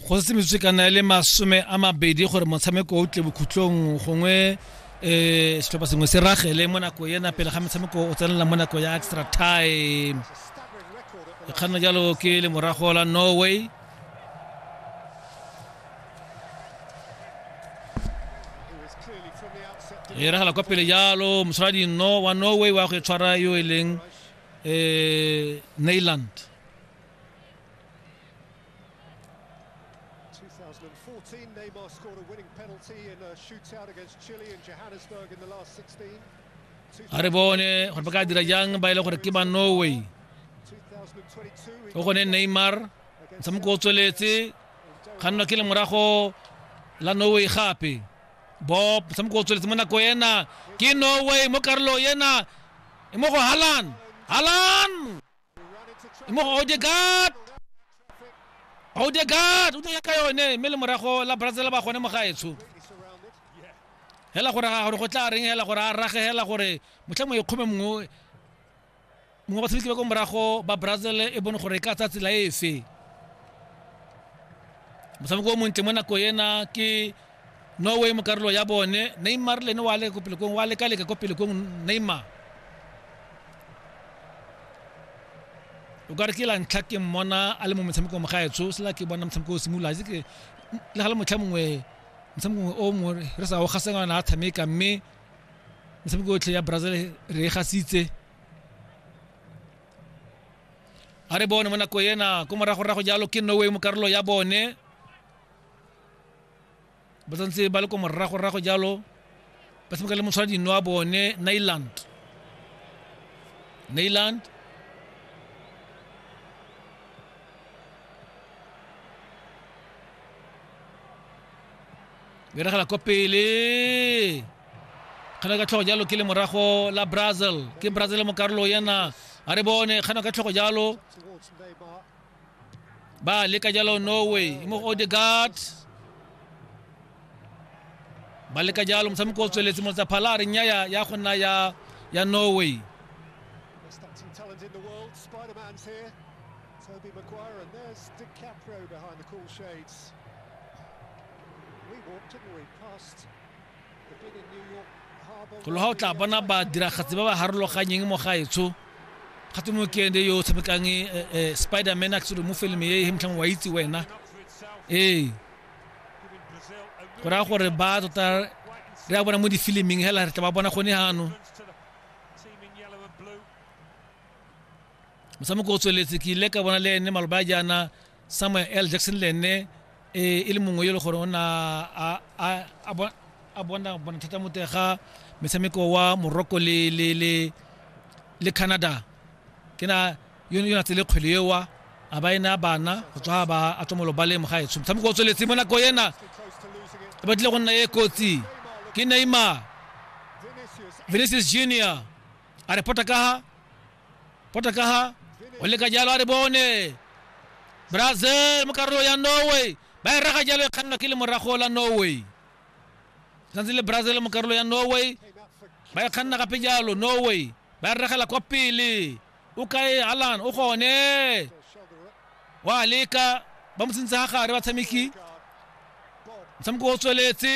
go se metswekana e le masome a mabedi gore motshameko o tle bokhutlong gongwe um setlhopha sengwe se ragele mo nako ena pele ga metshameko o tsenela mo nako ya extra time kganna jalo ke le morago la norway e ragala kwa pele jalo mosoladi no wa norway wa go e tshwara yo e leng um neyland 2014, Neymar scored a winning penalty in a shootout against Chile in Johannesburg in the last 16. a re bone gore ba ka dira jang ba e le gore ke ba norway 2022, o gone neymar motshameko o tsweletse kgannwa ke le morago la norway gape bob motshameko o tsweletse mo nako ena ke norway mo karolo ena e mo go halan halan mo go Odegaard Odegaard o ya ka yone mme le morago la Brazil ba gone mo gaetsho hela gore ga gore go tla reng hela gore a rage hela gore motlha mo ikgome mongwe mongwe ba tshameki ba ko morago ba Brazil e bone gore e ka tsa tsela efe motshameko o montle mo nako ena ke Norway mo karolo ya bone Neymar le ene wa leka ko pele kong wa leka leka ko pele kong Neymar o ka re ke la ntlha ke mmona a le mo motshamekong mo gaetsho sela ke bona motshameko o simolola itse ke le ga le motlha mongwe motshameko mongwe o mongwe re sa o gasengwana a tshameka mme metshameko yotlhe ya brazil re e gasitse a re bone mo nako ena ko moragorago jalo ke norway mo karolo ya bone ba tsantse ba le ko morago-rago jalo ba tshameka le motshwara dino wa bone nailand nailand beragela ko pele kgana ka tlhogo jalo ke le morago la brazil ke brazil mo karolo yana a re bone kgana ka tlhogo jalo ba leka jalo norway mo go odegaard ba leka jalo motshameko o tsweletse motsa phala a re nyaya ya go nna ya ya norway Best acting talent in the world, Spider Man's here. Toby Maguire, and there's DiCaprio behind the cool shades. We walked, didn't we, past golo ga o tla bona badiragatsi ba ba harologanyeng mo gaetsho ga tse mokende yo o tshamekang eh, eh, spider man a tsere mo filme e e motlhang wa itse wena ee go raya gore ba tota re a bona mo difiliming hela re tla ba bona gone gano motshameko o tsweletse ke ile ka bona le ene maloba a jaana Samuel L. Jackson le ene e e le mongwe yo e le gore o na a a a bo- a bona bona thata mo teng ga metshameko wa Morocco le le le le Canada ke na yo yo na tsele kgwele eo a ba ena bana go tswa ba a tswa mo lobaleng mo gaetsho motshameko o tsweletse mo nako ena e batlile go nna e kotsi ke Neymar Vinicius Junior a repota ka ha pota ka ha o leka jalo a re bone brazil mo karolo ya norway ba e raga jalo e kgannwa ke le morago la norway santse le brazil mo karolo ya norway ba e kganna gape jalo norway ba e regela kwa pele o kae alan o gone wa leka ba mo tsentse ga gare batshameki motshameko o tsweletse